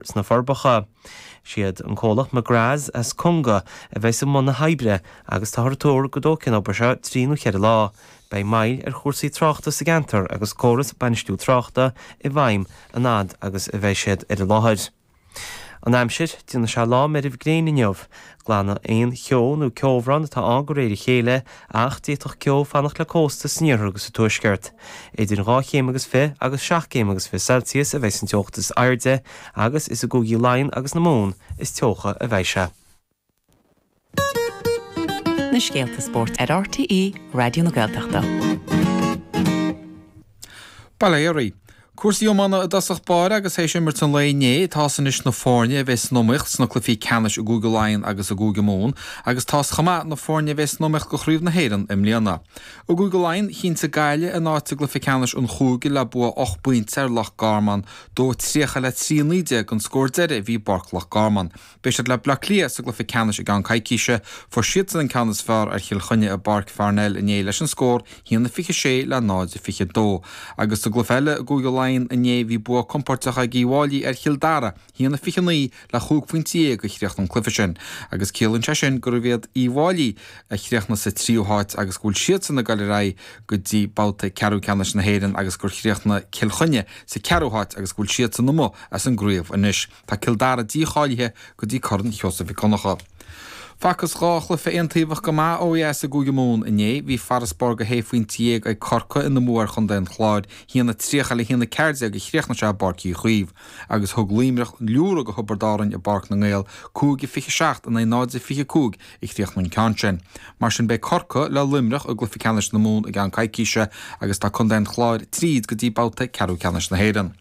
sna Forbacha. Siad an comhlacht McGraths as Conga a bheidh i mbun na hoibre agus táthar ag tuar go dtógfaidh an obair seo trí nó ceithre lá. Beidh moill ar chúrsaí tráchta sa gceantar agus córas bainistiú tráchta i bhfeidhm an fhad agus a bheidh siad ar an láthair. An aimsir, Déanfaidh sé lá meirbh gréine inniu. Glanfaidh aon cheo nó ceobhrán atá ann de réir a chéile, ach d'fhéadfadh ceo fanacht le cósta san iarthar agus sa tuaisceart. Idir dhá chéim agus fiche agus seacht gcéim agus fiche Celsius a bheidh an teocht is airde, agus is i gCúigí Laighean agus na Mumhan is teocha a bheidh sé. na scéalta spóirt ar RTÉ Raidió na Gaeltachta. Ball Éireann. Cúrsaí iomána i dtosach báire agus théis imirt an lae inné, tá's anois na foirne a bheidh san iomaíocht sna cluichí ceannais i gCúige Laighean agus i gCúige Mumhan agus tá's chomh maith na foirne a bheidh san iomaíocht go Craobh na hÉireann i mbliana. I gCúige Laighean, chinntigh Gaillimh a n-áit i gcluiche ceannais an chúige le bua ocht bpointe ar Loch Garman, 2-30 le 3-19 an scór deiridh a bhí i bPáirc Loch Garman. Beidh siad le Bleá Cliath sa gcluiche ceannais i gceann coicíse. Fuair siadsan an ceann is fearr ar Chill Chainnigh i bPáirc Pharnell inné leis an scór haon a 26 le 0 a 22. Agus sa gcluiche eile i gCúige Laighean inné bhí bua compóirteach ag Uí bhFáilí ar Chill Dara, haon a 29 le chúig phointe dhéag a chríochnaigh an cluiche sin agus ciallaíonn sé sin gurbh iad Uí bhFáilí a chríochnaigh sa tríú háit agus go bhfuil siadsan ag dul ar aghaidh go dtí babhta ceathrú ceannais na hÉireann agus gur chríochnaigh Cill Chainnigh sa ceathrú háit agus go bhfuil siadsan amuigh as an gcraobh anois. Tá Cill Dara dícháilithe go dtí Corn Sheosaimh Mhic Dhonncha. Facthas dhá chluiche aontaobhach go maith ó dheas i gCúige Mumhan inné. Bhí farasbarr go shé phointe dhéag ag Corcaigh ina mbua ar chontae an Chláir, haon a 30 le haon a 14 a chríochnaigh sé i bPáirc Uí Chaoimh, agus thug Luimneach liúradh go Thiobraid Árainn i bPáirc na nGael, 5-27 in aghaidh 0-25 a chríochnaigh an ceann sin. Mar sin beidh Corcaigh le Luimneach i gcluiche ceannais na Mumhan i gceann coicíse agus tá contae an Chláir tríd go dtí babhta ceathrú ceannais na hÉireann.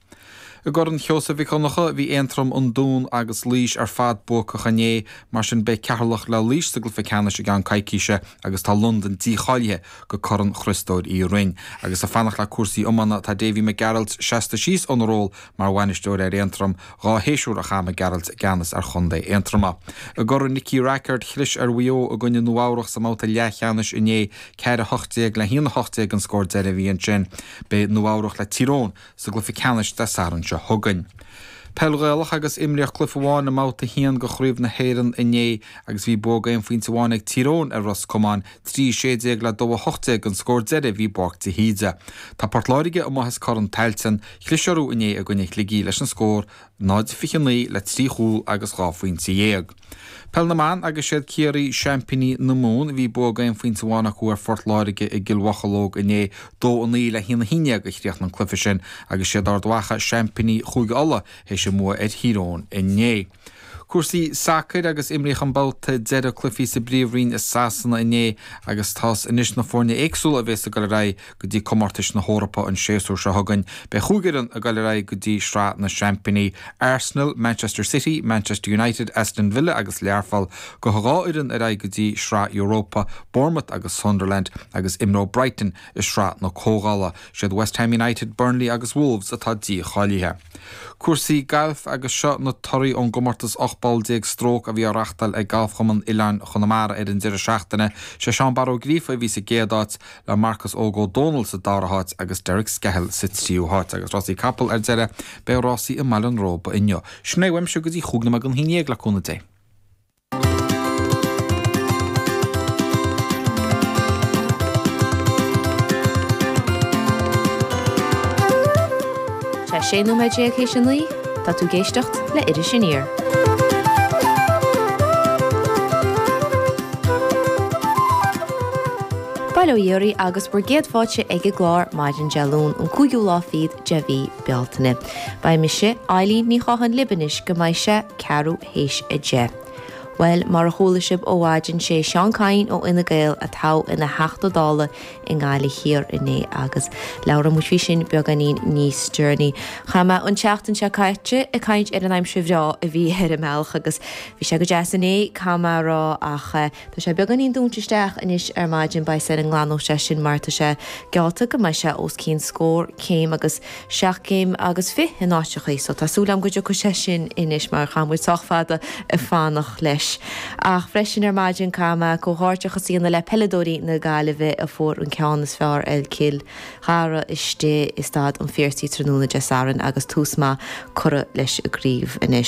I gCorn Sheosaimh Mhic Dhonncha, bhí Aontroim, an Dún agus Laois ar fad buacach inné, mar sin beidh Ceatharlach le Laois sa gcluiche ceannais i gceann coicíse agus tá Londain dícháilithe go Corn Chriostóir Uí Rinn. Agus le fanacht le cúrsaí iomána, tá Davy Mac Gearailt seasta síos óna ról mar bhainisteoir ar Aontroim. Dhá shéasúr a chaith Mac Gearailt i gceannas ar chontae Aontroma. I gCorn Nicky Rackard, chlis ar Mhaigh Eo i gcoinne Nua Eabhrach sa mbabhta leathcheannais inné, ceathair a hocht déag le haon a hocht déag an scór deiridh a bhí ansin. Beidh Nua Eabhrach le Tír Eoghain sa gcluife ceannais de Satharn seo chugainn. Peil Ghaelach agus imríodh cluife amháin i mBabhta 1 de Chraobh na hÉireann inné agus bhí bua aon phointe amháin ag Tír Eoghain ar Ros Comáin, 3:16 le 2:18 an scór deiridh a bhí i bPáirc de hÍde. Tá Port Láirge amuigh as Corn Tailteann, chlis orthu inné i gcoinne Shligigh leis an scór 0-29 le trí chúl agus dhá phointe dhéag. Peil na mBan Agus siad Ciarraí seaimpíní na Mumhan, bhí bua d'aon phointe amháin acu ar Phort Láirge i gCill Mhocheallóg inné. Dó a naoi le haon a haon déag a chríochnaigh an cluiche sin agus siad Ard Mhacha, seaimpíní Chúige Uladh, théis a mbua ar Thír Eoghain inné. Cúrsaí sacair Agus imríodh an babhta deiridh cluichí sa bPríomhroinn i Sasana inné agus tá a fhios anois na foirne éagsúla a bhéas ag dul ar aghaidh go dtí comórtais na hEorpa an séasúr seo chugainn. Beidh chúig fhoireann ag dul ar aghaidh go dtí Sraith na Seaimpíní, Arsenal, Manchester City, Manchester United, Aston Villa agus Learpholl. Gabhfaidh dhá fhoireann ar aghaidh go dtí Sraith Europa, Bournemouth agus Sunderland, agus imreoidh Brighton i Sraith na Comhdhála. Siad West Ham United, Burnley agus Wolves atá dícháilithe. Cúrsaí gailf agus seo na torthaí ón gcomórtas 18 bpoll stróc a bhí á reachtáil ag Galfchumann Oileáin Chonamara ar an deireadh seachtaine. Sé Seán Barra Ó Gríofa a bhí sa gcéad áit le Marcus Óg Ó Dónaill sa dara háit agus Derek Skehill sa tríú háit. Agus rásaí capall ar deireadh, beidh rásaí i mBaile an Róba inniu. Sin é uaimse go dtí chúig nóiméad don haon déag le cúnamh Dé. Tá 16 nóiméad théis a naoi, tá tú ag éisteacht le Iris Aniar. Bail ó Dhia oraibh agus bhur gcéad fáilte ag an gclár maidin Dé Luain an cúigiú lá fichead de mhí Bealtaine. Beidh mise, Eibhlín Ní Chonghaile libh anois go mbeidh sé ceathrú théis a deich. Bhuel, mar a chuala sibh ó mhaidin, sé Seán Kyne ó Fhine Gael a toghadh ina Theachta Dála i nGaillimh Thiar inné agus labhróidh muid faoi sin beagáinín níos deireanaí. Chaith mé an tseachtain seo caite ag caint ar an aimsir bhreá a bhí ar an mbealach agus bhí sé go deas inné, caithfidh mé a rá, ach eh, Tá sé beagáinín dúnta isteach anois ar maidin, beidh súil go nglanfaidh sé sin mar tá sé geallta go mbeidh sé os cionn scór céim agus seacht gcéim agus fiche in áiteachaí so tá súil agam go dtiocfaidh sé sin anois mar chaith muid sách fada ag fanacht leis. Ach freisin ar maidin caithfidh mé comhghairdeachas a dhéanamh le peileadóirí na Gaillimhe a fuair an ceann is fearr ar Chill Dara istigh i Staid an Phiarsaigh tráthnóna Dé Sathairn agus tús maith curtha leis an gcraobh anois.